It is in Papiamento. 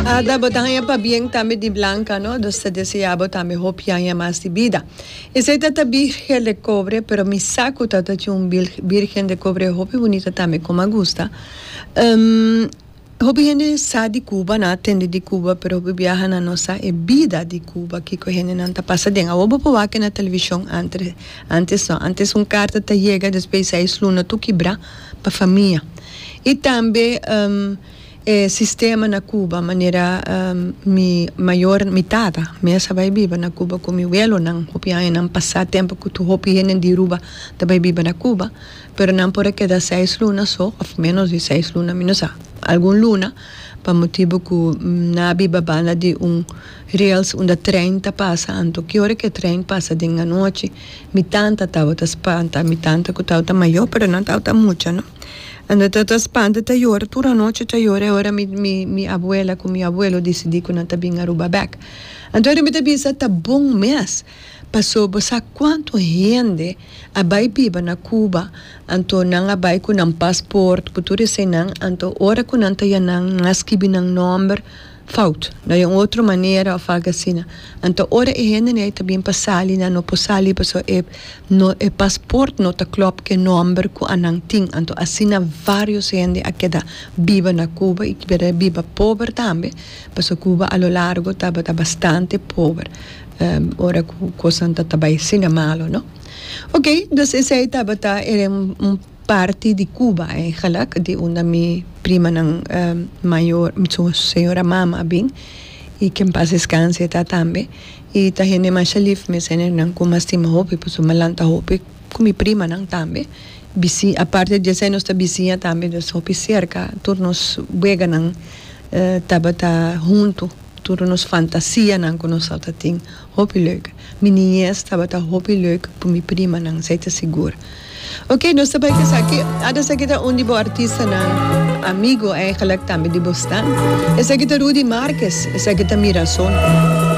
Ada bo ta haña pabien tambe di blanca, no? Nos ta desea bo tambe hopi aña mas di bida. Esei ta ta birgel de cobre, pero mi sa cu ta ta tin un birgen de cobre hopi bunita tambe con a gusta. Hopi hende sa di Cuba, nan a tende di Cuba, pero hopi biahanan no sa e bida di Cuba, kico e hendenan ta pasa den. Awor bo por wak na television, antre, antes no. Antes un carta ta yega, despues seis luna tur kibra pa famia. Y tambe. E sistema na Cuba manera mi mayor mi tata mes a bay biba na Cuba cu mi welonan hopi añanan pasa tempo cu tur hopi hende di Aruba ta bay biba na Cuba pero nan por a keda seis luna so of menos di seis luna mi no sa algun luna pa motibo cu nan a biba banda di un rails unda train ta pasa anto ki ora ki train pasa den anochi mi tanta tabata spanta mi tanta cu tabata mayor pero no tabata mucha no. Ando ta ta spanta ta yora tur anochi ta yora e ora mi mi mi abuela cu mi abuelo dicidi cu nan ta bin Aruba bek anto ora mi ta bisa ta bon mes pasobra bo sa cuanto hende a bay biba na Cuba anto nan a bay cu nan pasport cu tur esey nan anto ora cu nan ta ya nan nan a skibi nan nomber Fout. No e un otro manera of algo asina. Anto ora e hendenan ei ta bin pa sali nan no por sali paso e no e pasport no ta klop ku e nomber ku anan tin. Anto asina varios hende a keda biba na Cuba i keda a biba pober tambe paso Cuba a lo largo tabata bastante pober ora ku kosnan ta ta bai asina malo, no. Oke, dus esei tabata e Parti di Cuba eigenlijk di unda mi primanan mayor, su señora mama a bin y que en paz descanse ta tambe y ta hende masha lif mi senernan cu mas stima hopi pasobra mi a lanta hopi cu mi primanan tambe bisi aparte di esey nos ta bisiña tambe nos ta hopi cerca tur nos weganan tabata hunto tur nos fantasianan cu nos al ta tin hopi leuk. Mi niñez tabata hopi leuk ku mi primanan, esei ta sigur. Oke, nos ta bai kasa. Ke a ta esaki ta un di bo artistanan amigu, eigelik tambe di bo stan. Esaki ta Rudy Marques, esaki ta Mirazon.